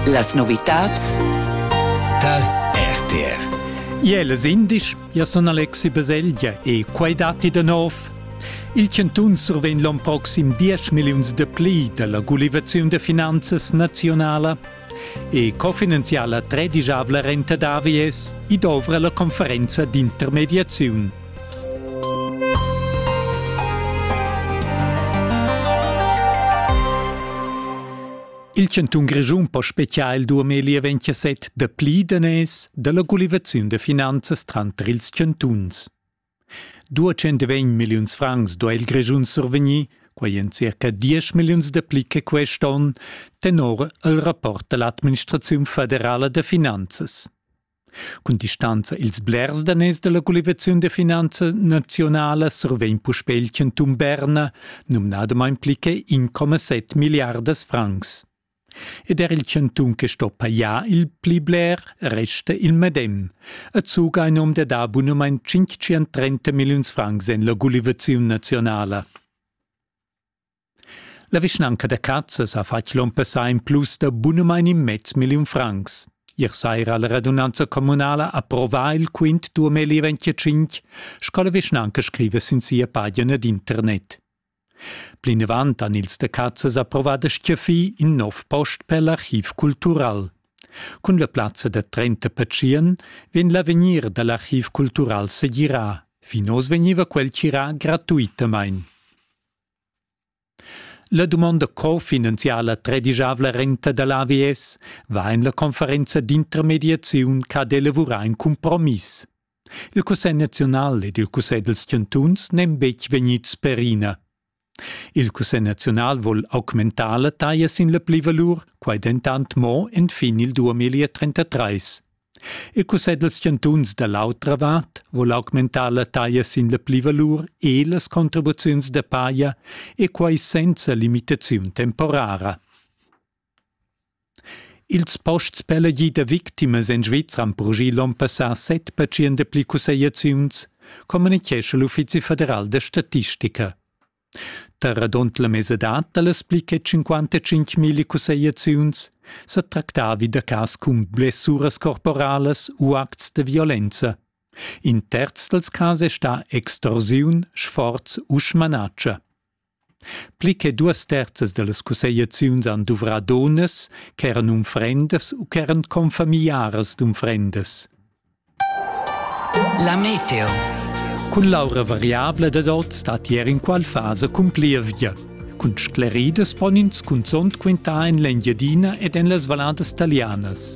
Las novitads tar RTR. Iel es indisch, ja sun Alexi Baselgia e quai datti da nov. Il chantun survegn l'on proxim 10 milliuns de pli dalla gulivaziun de finanzas nazionala e cofinanziala tredigiavla renta davi es i dovra la conferenza d'intermediaziun. Il chantun Grischun po spezial il 2027 da pli daners dalla gulivaziun da finanzas tranter ils chantuns. 200 milliuns francs do il Grischun survegnir, quei en circa 10 milliuns de pli che quest'on, tenor il rapport dall'administraziun federala da finanzas. Cun distanza ils blers daners dalla collivaziun de finanza nazionala survegn puspè il cantun Berna, numnadamain pli che 1,7 milliardas francs. Ed er il cantun che sto pajar il pli bler resta il medem, e zuga ein um de da bunamain 530 milliuns francs en la collivaziun nazionala. La vischnanca da Cazas ha fatg l'onn passà in plus da bunamain in mez milliun francs. Ier saira ha la radunanza communala approvà il quint 2025, sco la vischnanca scriva sin sia pagina d'internet. Plinavant han ils da Cazas approvà da stgaffir in nov post per l'archiv cultural. Cun la plazza da 30 patschien vegn l'avegnir da l'archiv cultural segirà. Fin oz vegniva quel tirà gratuitamain. La dumonda co-finanziala tredigiavla renta da l'AVS va en la conferenza d'intermediaziun ch'ha elavurà in cumpromiss. Il Cussegl naziunal ed il Cussegl dals chantuns n'èn betg vegnids perina. Il Cussegl naziunal vul augmentar la taglia sin la plivalur, quai dentant mo enfin il 2033. Il cussegl dals chantuns da l'autra vart vul augmentar la taglia sin la plivalur e las contribuziuns da paja e quai senza limitaziun temporara. Ils posts per la gida victimas en Svizra han progì l'onn passà set percent da pli cussegliaziuns, communitgescha l'Uffizi federal da statistica. Da radund la mesadad dallas pli che cinquantacinc mille cussegliaziuns sa tractavi da cas cun blessuras corporalas u acts da violenza. In terz dals cas è stà extorsiun, sforz u smanatscha. Pli che duas terzas da las cussegliaziuns han duvrà donnas ch'eran unfrendas u ch'eran confamiliaras d'unfrendas. La meteo. Cun l'aura variabla dad oz stat ier inqual fasa cun plievgia. Cun scleridas pon ins cunzont quintar en l'Engiadina ed en las valladas talianas.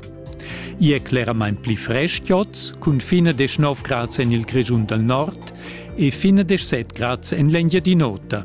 Ia è cleramain pli frestg oz, cun fin a 19 grads en il Grischun dal nord e fin a 17 grads en l'Engiadin'Ota.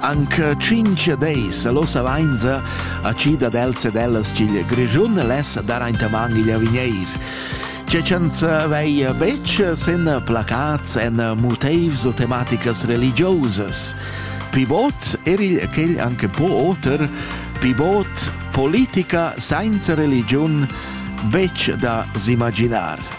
Anc tschinch deis l'ossa vainza ha chi dad els ed ellas ch'il Grischun less dar aintamaing igl Avigneir. Che ch'ans veia betg sen placats en motivs o tematicas religiosas. Pivot er il quel anche po oter, pivot politica sainza religiun betg da s'imaginar.